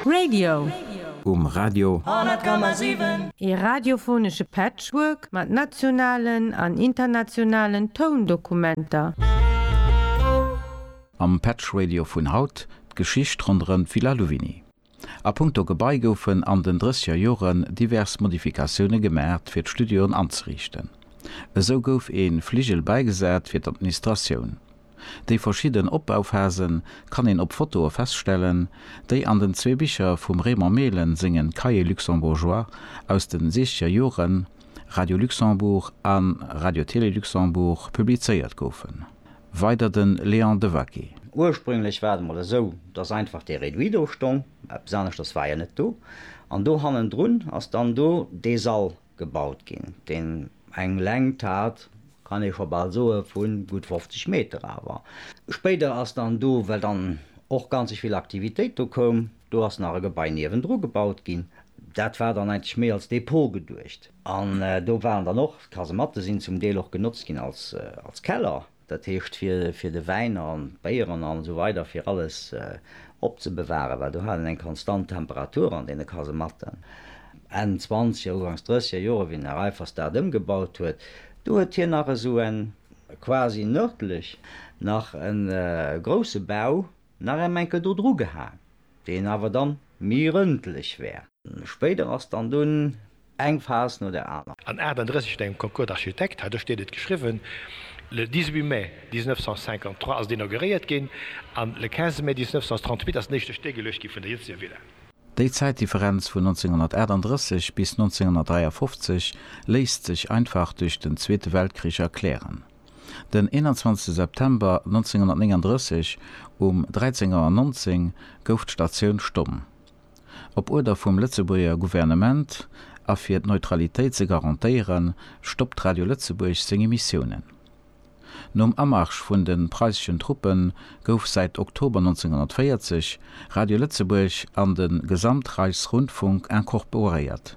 Radio. Um Radio. 100,7. Ee radiophonesche Patchwork mat nationalen an internationalen Toundokumenter. Am Patch Radio vun haut, d'Geschicht ronderëm d'Villa Louvigny. A punkto Gebai goufen an den drësseger Joren divers Modifikatioune gemaacht fir d'Studioen anzeriichten. Esou gouf ee Fligel bäigesat fir d'Administratioun. Déi verschidden Opbauphasen kann een op Fotoe feststellen, déi an den zwee Bicher vum Raymond Mehlen sengen Cahiers luxembourgeois aus den siechzeger Joren, Radio Luxembourg a Radio-Télé Luxembourg, publizéiert goufen. Weider den Léon Devaquet. Ursprünglech war et mol esou, dass einfach dee Réduit do stong, eppes aneschters war jo net do, an do hannendrun ass dann do dee Sall gebaut ginn, deen eng Längt hat, kann ee scho bal soe vu gutt 50 Meter. Awer spéider ass dann do, well dann och ganzeg vill Aktivitéit do koum, do ass nach e Gebai niewendru gebaut ginn, dat war dann eigentlech méi als Depot geduecht. An do waren dann och d'Kasematte sinn zum Deel och genotzt ginn als Keller. Dat heescht fir de Wäin an d'Béieren an esou weider fir alles opzebewaren, well do hat een eng konstant Temperatur an deene Kasematten. Enn zwanzeger, ugangs drësseger Joer, wéi den Här Reiffers dat ëmgebaut huet, do huet hien nach esou en, quasi nërdlech, nach e grousse Bau nach en Enkel do dru gehaang, deen awer dann mi rëndlech wär. Spéider ass dann dunn eng Phas no der aner. An 38 an engem Concours d'architectes hat ech deen et geschriwwen. Le 18 mai 1953 ass et inauguréiert ginn an le 15 mai 1938 ass den éischte Stéck geluecht ginn vun der jëtzeger Villa. Déi Zäitdifferenz vun 1938 bis 1953 léisst sech einfach duerch den Zweete Weltkrich erklären. Den 21 September 1939 um 13 Auer 19 gouf d'Statioun stomm. Op Uerder vum Lëtzebuerger Gouvernement a fir d'Neutralitéit ze garantéieren, stoppt Radio Lëtzebuerg seng Emissiounen. Nom Amarsch vun de preisseschen Truppe gouf säit Oktober 1940 Radio Lëtzebuerg an de Gesamtreichsrundfunk incorporéiert.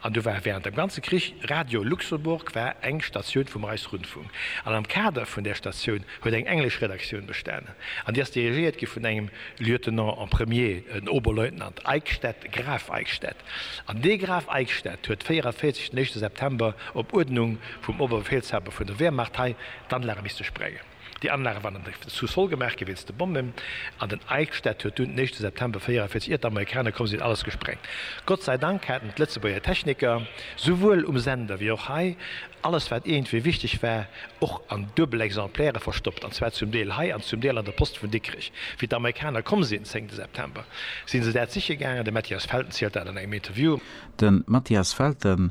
An do war während dem ganze Krich, Radio Luxembourg war eng Statioun vum Reichsrundfunk, an am Kader vun där Statioun huet eng englesch Redaktioun bestanen, an déi ass dirigéiert gi vun engem Lieutenant en premier, en Oberleutnant Eickstedt, Graf Eickstedt. An dee Graf Eickstedt huet 44 den éischte September op Uerdnung vum Oberbefehlshaber vun der Wehrmacht hei d'Anlage misste sprengen. Déi Anlage waren an der Sous-sol gemaach gi wéinst de Bommen an den Eichstätt huet dunn den éischte September 44 iert d'Amerikaner komm sinn alles gesprengt. Gott sei Dank haten d'Lëtzebuerger Techniker, souwuel um Sender wéi och hei, alles wat iergendwéi wichteg war och an duebel Exemplaire verstoppt an zwar zum Deel hei an zum Deel an der Post vun Dikrech. Wéi d'Amerikaner komm sinn, zéngte September, si se dat siche gaangen, de Mathias Felten zielt dat an engem Interview. De Mathias Felten,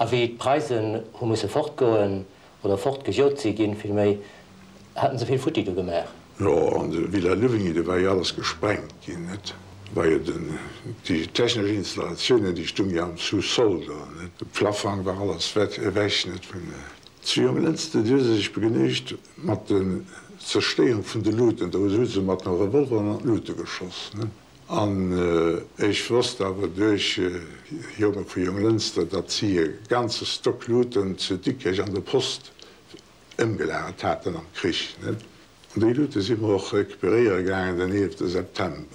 A wéi d'Preisen hu musse fortgoen, oder fortgejot si ginn villméi, haten se vill futti do gemaach. Jo, an de Villa Louvigny, do war jo alles gesprengt ginn, net? Do war jo den, déi technesch Installatiounen, déi stung jo am Sous-sol do, net? De Plaffang war alles wett, ewech, net? Vun. Zu Jonglënster, déi hu se sech begnügt mat den Zerstéierung vun de Luten, do hu se mat de Revolveren an d'Lute geschoss, net? An ech wosst awer duerch Jongere vu Jonglënster, datt si e ganze Stock Luuten zu Dikkech an der Post ëmgelagert haten am Krich. An déi Luute si mer och recuperéiere gaangen den 11 September.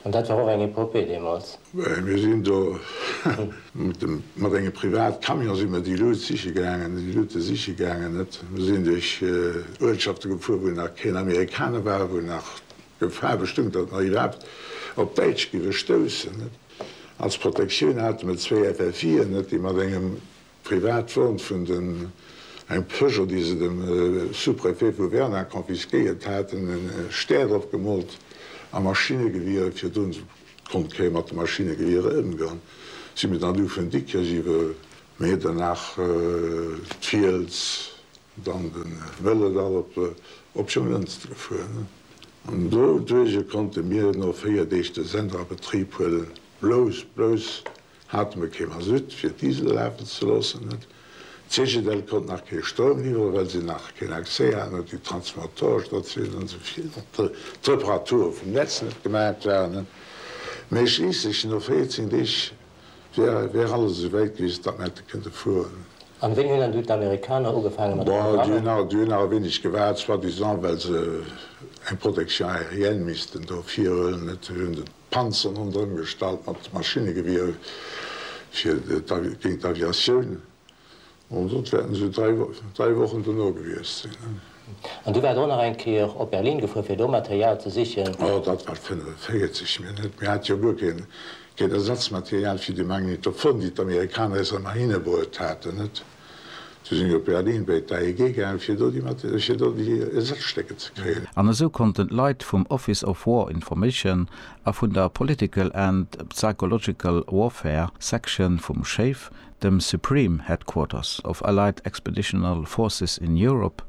An dat war och eng Epopée deemools. Mir sinn do mat engem Privatcamion si mer déi Luut siche gaangen, déi Luute siche gaangen. Mir sinn duerch Uertschafte gefuer, wou nach keen Amerikaner war, wou nach. D'Gefahr bestoung, datt mer iwwerhaapt op Däitsch géiwe stoussen. Als Protektioun hate mer zwéi FFIen, déi mat engem Privatwon vun den, engem Peugeot, déi se dem Sous-préfet vu Werner confisquéiert haten, e Stär drop gemoolt a Maschinegewiere fir drun konnt kréien. Mat de Maschinegewiere ëmgang si mer dann du vun Dikrech iwwer Medernach, d'Fiels, Dann de Vëlodall op de Optionlënster fueren an doduerje konnte mir no 4 Deeg de Sender a Betrib huelen. Blouss, blouss hate mir kee Masutt fir d'Disel lafen ze loossen. D'Cegedel konnt nach kee Stroum liwwere well si nach keen Accès haten un déi Transformateurestatiounen an souvill d'Reparature vum Netz net gemaach waren. Mee schliisslech no 14 Deeg Wär alles esou wäit gewiescht, datt mer hätte kënnte flugen. An wéini hunn dann du d'Amerikaner ugefaange mat de Programmer? Bon, déi hunn nach e wéineg gewaart, soi-disant well se eng Protection aérienne missten do virhuelen. Et hunn se d'Panzeren ronderëm gestallt mat Maschinnegewiere fir géint d'Aviatioun. Ansonst wäerten se dräi Wochen dono gewiesst sinn. An du waars och nach eng Kéier op Berlin gefuer, fir do Material ze sichen? Oh, dat war 45 mir net. Mir hate jo guer keen Ersatzmaterial fir déi Magnetophon, déi d'Amerikaner eis ëmmer hinebruet haten, net? Du sinn mir op Berlin bei d'AEG gaangen, fir do déi Ersazstécker ze kréien. An esou konnten d'Leit vum Office of War Information a vun der Political and Psychological Warfare Section vum SHAEF dem Supreme Headquarters of Allied Expeditional Forces in Europe,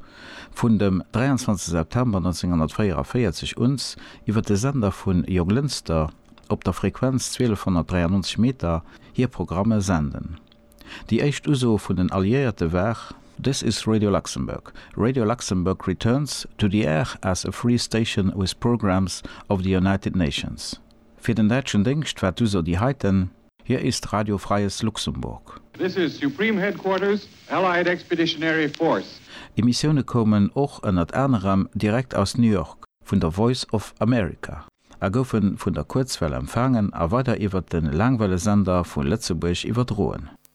vun dem 23 September 1944 uns iwwer de Sender vun Joglinster op der Frequenz 1293 Meter hir Programme senden. Déi éischt Uso vun den Alliéierte war. This is Radio Luxembourg. Radio Luxembourg returns to the air as a free station with programmes of the United Nations. Fir den däitschen Déngscht war d'Uso déi heiten. Hier ist Radio Freies Luxemburg. This is Supreme Headquarters, Allied Expeditionary Force. Emissioune koumen och ënnert anerem direkt aus New York vun der Voice of America a goufe vun der Kuerzwell empfaangen a weider iwwert de Laangwellesender vu Lëtzebuerg iwwerdroen.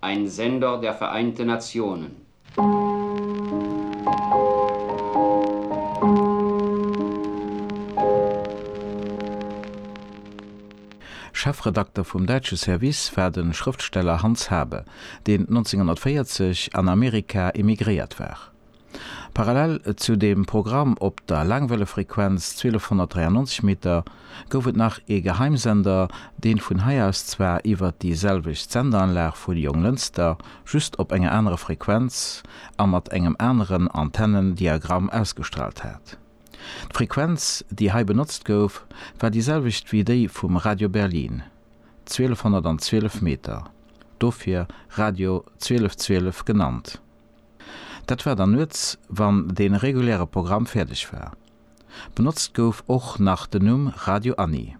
Ein Sender der Vereinten Nationen. Chefredakter vum däitsche Service war de Schrëftsteller Hans Habe, deen 1940 an Amerika emigréiert war. Parallel zu dem Programm op der Laangwellefrequenz 1293 Meter gouf et nach ee Geheimsender, deen vun hei aus zwar iwwert déi selwecht Sendeanlag vu Jonglënster, just op enger anerer Frequenz a mat engem aneren Antennendiagramm ausgestraalt hat. D'Frequenz déi hei benotzt gouf war déi selwecht wéi déi vum Radio Berlin, 1212 Meter, dofir Radio 1212 genannt. Dat war dann nuets, wann dee reguläre Programm fäerdeg war. Benotzt gouf och nach den Numm Radio Annie.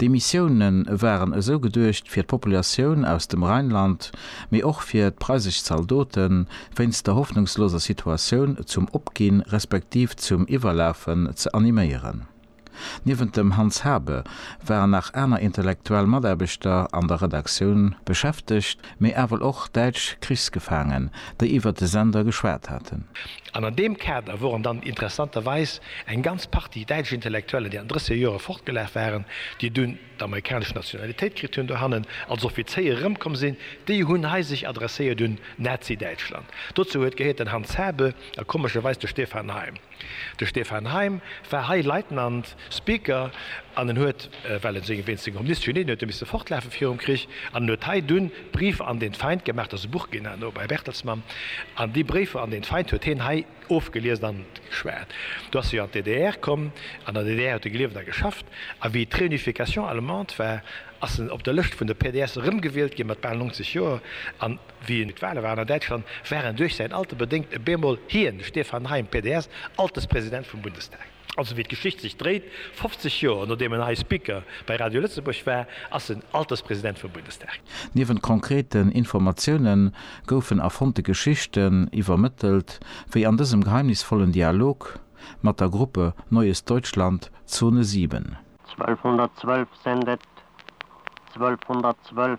D'Emissioune waren esou geduecht fir d'Populatioun aus dem Rheinland, mee och fir d'preisesch Zaldoten, wéinst der hoffnungsloser Situatioun zum Opginn respektiv zum Iwwerlafen ze animéieren. Niewent dem Hans Habe waren nach aner intellektuell Mataarbechter an der Redaktioun beschäftegt, mee ewell och däitsch Krichsgefaangen, déi iwwert de Sender geschwat haten. An an deem Kader woren dann interessanterweis eng ganz Partie däitsch Intellektuellen, déi an 30er Jore fortgelaf waren, déi dunn d'amerikanesch Nationalitéit kritt hunn, dohannen als Offizéier erëmkomm sinn, déi hunn hei sech adresséiert un Nazi-Däitschland. Dozou huet gehéiert den Hans Habe a komescherweis de Stefan Heym. De Stefan Heym war hei Leitnant, Speaker, an en huet, well en seng, wéinst senger Omniscience, Genieen, huet e misse fortlafe virum Krich, an en huet hei dunn Briefe an den Feind gemaach, dat ass e Buch ginn herno bei Bertelsmann, an déi Bréifer an den Feind huet hien hei ofgeliest an geschwat. Du ass hie an d'DDR komm, an der DDR huet e gelieft a geschafft, a wéi d'Réunification allemande war, ass en op der Lëscht vun de PDS erëmgewielt ginn, mat bal 90 Joer, an. Wéi et d'Wahle waren an Däitschland, war en duerch säin Alter bedéngt e bemol hien, de Stefan Heym, PDS, Alterspresident vum Bundestag. Also wéi d'Geschicht sech dréit, 50 Joer nodeem en hei Speaker bei Radio Lëtzebuerg war, ass en Alterspresident vum Bundestag. Niewent konkreten Informatioune goufen erfonnte Geschichten iwwermëttelt, wéi an dësem geheimnisvollen Dialog mat der Gruppe Neues Deutschland, Zone 7. 1212 sendet 1212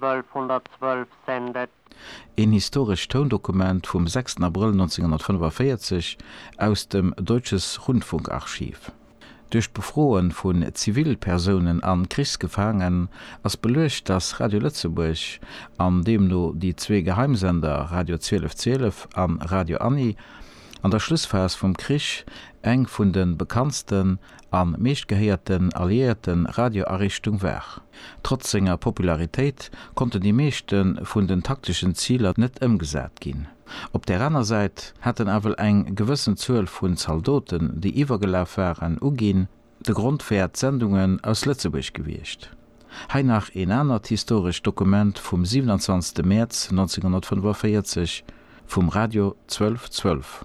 1212 send et. Een historescht Toundokument vum 6 Abrëll 1945 aus dem Deutsches Rundfunkarchiv. Duerch d'Befroe vun Zivilpersounen a Krichsgefaangen ass beluecht, datt Radio Lëtzebuerg, an deemno déi zwee Geheimsender Radio 1212 a Radio Annie, an der Schlussphas vum Krich eng vun de bekanntsten an meeschtgehéierten alliéierten Radioariichtung war. Trotz senger Popularitéit konnten déi meeschten vun den takteschen Ziler net ëmgesat ginn. Op der aner Säit haten awel eng gewëssen Zuel vun Zaldoten, déi iwwergelaf waren, uginn, de Grond wär d'Sendungen aus Lëtzebuerg gewiescht. Hei nach een anert historescht Dokument vum 27 Mäerz 1945 vum Radio 1212.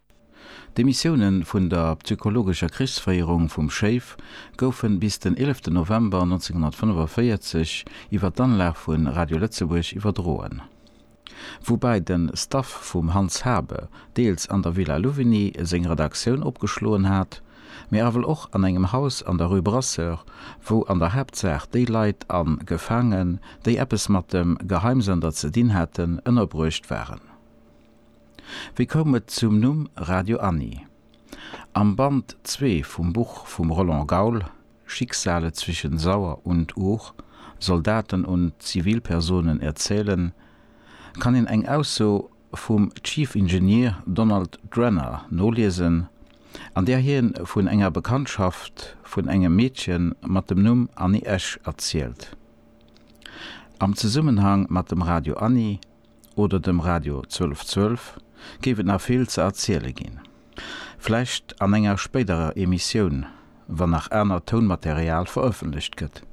D'Demissioune vun der psychologescher Krichsféierung vum Schéif goufe bis den 11 November 1945 iwwer d'Anlag vu Radio Lëtzebuerg iwwerdroen. Woubäi de Staff vum Hans Habe deels an der Villa Louvigny seng Redaktioun opgeschloen hat, mee awel och an engem Haus an der Rue Brasseur, wou an der Haaptsaach déi Leit a Gefaangen, déi eppes mat dem Geheimsender ze dinn haten, ënnerbruecht waren. Wéi koum et zum Numm Radio Anni? Am Band zwee vum Buch vum Roland Gaul, Schicksale zwischen Sauer und Our, Soldaten und Zivilpersonen erzählen, kann een eng Ausso vum Chief Engineer Donald Drenner noliesen, an där hie vun enger Bekanntschaft vun engem Meedche mat dem Numm Anni Esch erzielt. Am Zesummenhang mat dem Radio Anni oder dem Radio 1212 géif et nach vill ze erziele ginn. Vläicht an enger spéiderer Emissioun, wann nach anert Tounmaterial verëffentlecht gëtt.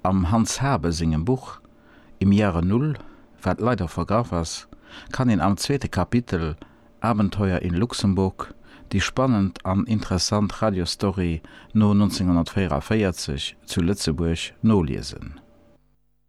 Am Hans Habe sengem Buch Im Jahre Null, wat leider vergraff ass, kann een am zweete Kapitel Abenteuer in Luxemburg déi spannend an interessant Radiostory no 1944 zu Lëtzebuerg noliesen.